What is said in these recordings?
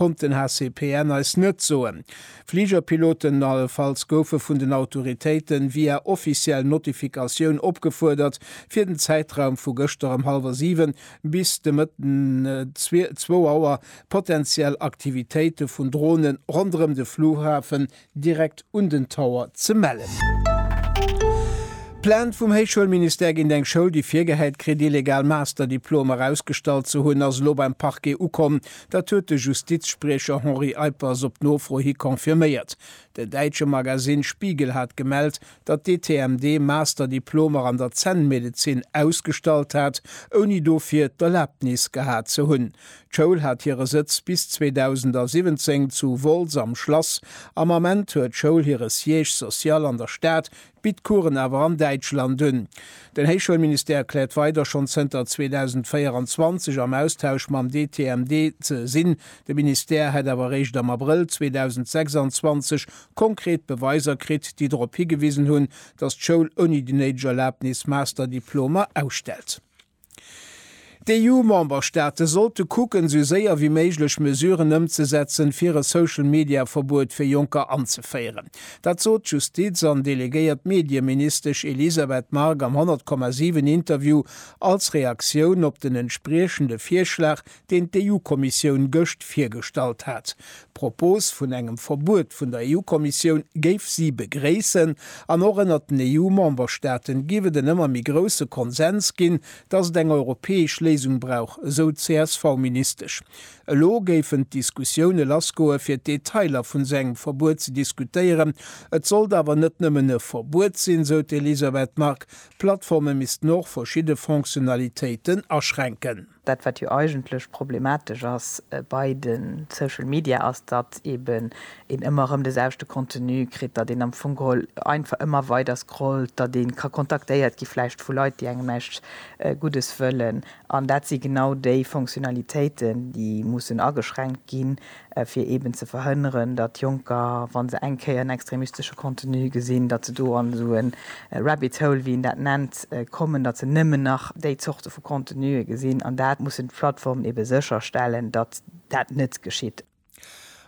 konnt den HCPN eis net soen. Fligerpiloten allefalls goufe vun den Autoritéiten via offiziell Notifikatioun opgefuerdert, fir den Zäitraum vu gëschter ëm hallwer 7 bis de Mëtten 2 Auer potenziell Aktivitéite vun Dronen ronderëm de Flughafen direkt un den Tower ze mellen. Plainte vum Héichschoulministère géint eng Schoul, déi virgehäit kritt, illegal Masterdiplomer erausgestallt ze hunn, ass elo beim Parquet ukomm. Dat huet de Justizspriecher Henri Eippers op Nofro hi confirméiert. Den däitsche Magasinn Spiegel hat gemellt, datt d'ETMD Master-Diplomer an der Zännmedezin ausgestallt hat, ouni dofir d'Erlaabnis gehat ze hunn. D'Schoul hat hire Sëtz bis 2017 zu Wolz am Schlass. Am Ament huet d'Schoul hire Siège social an der Stad, bitt Coursen awer an Däitschland un. Den Héichschoulministère kläert weider schonn zënter 2024 am Austausch mam d'ETMD ze sinn. De Ministère hätt awer eréischt am Abrëll 2026 konkret Beweiser kritt, déi drop higewisen hunn, datt d'Schoul ouni déi néideg Erlabnis Master-Diplomer ausstellt. D'EU-Memberstaate sollte kucken, esou séier wéi méiglech Mesuren ëmzesetzen, fir e Social-Media-Verbuet fir Jonker anzeféieren. Dat sot d'Justiz an delegéiert Medieministesch Elisabeth Margue am 100,7 Interview als Reaktioun op den entspriechende Virschlag, deen d'EU-Kommissioun gëscht virgestallt hat. D'Propos vun engem Verbuet vun der EU-Kommissioun géif si begréissen an och ënnert den EU-Memberstaaten géif et en ëmmer méi grousse Konsens ginn, datt et eng europäesch Léisung brauch, esou d'CSV-Ministesch. Elo géifen d'Diskussioune lassgoe fir d'Detailer vun esou engem Verbuet ze diskutéieren. Et sollt awer net nëmmen e Verbuet sinn, sou d'Elisabeth Margue, d'Plattforme missten och verschidde Fonctionnalitéiten aschränken. Dat wat jo eigentlech problematesch ass bei de Social Media ass, datt eben een ëmmer erëm de selwechte Contenu kritt, datt een am Fong geholl einfach ëmmer weider scrollt, datt ee ka kontaktéiert gi vläicht vu Leit déi engem näischt Guddes wëllen. An dat si genau déi Fonctionnalitéiten déi mussen ageschränkt ginn, fir eben ze verhënneren, datt Jonker, wa se eng Kéier en extremistesche Contenu gesinn, datt se do an esou e Rabbit Hole, wéi een dat nennt, kommen, datt se nëmmen nach déi Zorte vu Contenue gesinn. An dat mussen d'Plattformen ebe sécherstellen, datt dat net geschitt.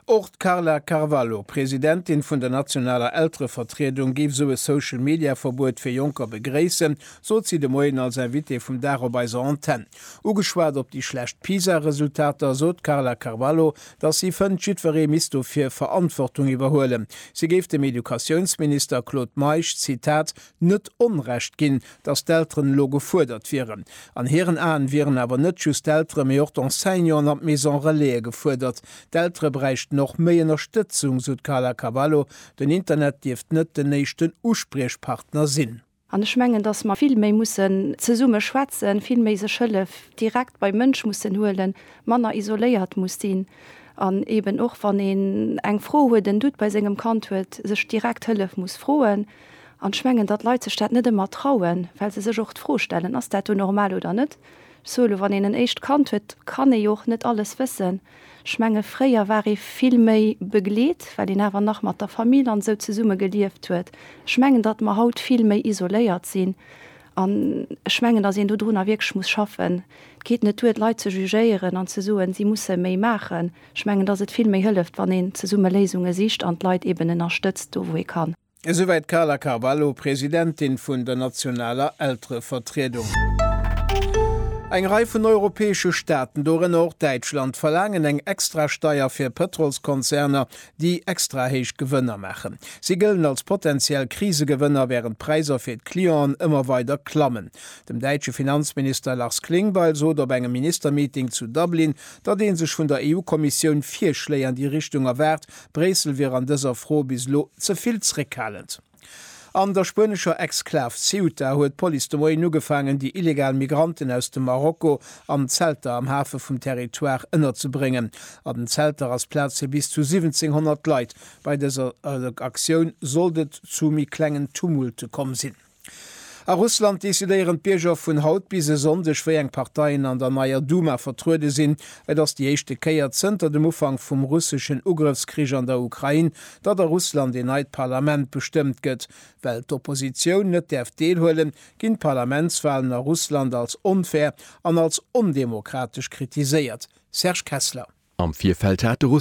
Och d'Carla Carvalho, Presidentin vun der nationaler Elterevertriedung, géif esou e Social-Media-Verbuet fir Jonker begréissen, sot si de Moien als Invitée vum Dag op eiser Antenn. Ugeschwat op déi schlecht PISA-Resultater sot d'Carla Carvalho, datt si fënnt, jiddweree misst dofir Verantwortung iwwerhuelen. Si géif dem Educatiounsminister Claude Meisch, Zitat, net Onrecht ginn, datt d'Elteren elo gefuerdert wieren. An hiren Aen wieren awer net just d'Eltere mee och d'Enseignanten an d'Maison-relaise gefuerdert. D'Eltere bräichten och méi Ënnerstëtzung, sou d'Carla Carvalho. Den Internet dierft net den éischten Uspriechpartner sinn. An ech mengen, dass mer vill méi mussen zesumme schwätzen, vill méi sech Hëllef direkt beim Mënsch mussen huelen, manner isoléiert muss sinn an eeben och, wann een eng Fro huet, en Doute bei sengem Kand huet, sech direkt Hëllef muss froen. An ech mengen, datt Leit sech dat net ëmmer trauen, well se sech och d'Fro stellen, Ass dat do normal oder net? Ech soe lo, wann een en éischt Kand huet, kann ee jo och net alles wëssen. Ech menge fréier war ee vill méi begleet, well een awer nach mat der Famill an esou zesumme gelieft huet. Ech mengen, datt mer haut vill méi isoléiert sinn an ech mengen, datt een dodrunner wierklech muss schaffen. Et geet net duer, d'Leit ze jugéieren an ze soen, si musse méi maachen. Ech mengen, datt et vill méi hëlleft, wann een zesumme Léisunge sicht an d'Leit eeben ënnerstëtzt do, wou ee kann. Esouwäit d'Carla Carvalho, Presidentin vun der nationaler Elterevertriedung. Eng Rei vun europäesche Staaten, dorënner och Däitschland, verlaangen eng Extrasteier fir Pëtrolskonzerner, déi extra héich Gewënner maachen. Si gëllen als potentiell Krisegewënner, wärend d'Präisser fir d'Clienten ëmmer weider klammen. Dem däitsche Finanzminister Lars Klingbeil sot op engem Ministermeeting zu Dublin, datt ee sech vun der EU-Kommissioun Virschléi an déi Richtung erwaart, Bréissel wier an dëser Fro bis elo ze vill zréckhalend. An der spuenescher Exklav Ceuta huet d'Police de Moien ugefaangen, déi illegal Migranten aus dem Marokko an Zelter am Hafe vum Territoire ënnerzebréngen. An den Zelter ass Plaz fir bis zu 1.700 Leit. Bei dëser Aktioun sollt et zu méi klengen Tumulte komm sinn. A Russland decidéieren d'Bierger vun haut bis e Sonndeg, wéi eng Parteien an der neier Duma vertruede sinn. Et ass déi éischte Kéier zënter dem Ufank vum russeschen Ugrëffskrich an der Ukrain, datt a Russland een neit Parlament bestëmmt gëtt. Well d'Oppositioun net däerf deelhuelen, ginn d'Parlamentswalen a Russland als onfair an als ondemokratesch kritiséiert. Serge Kessler. Am Virfeld hat de.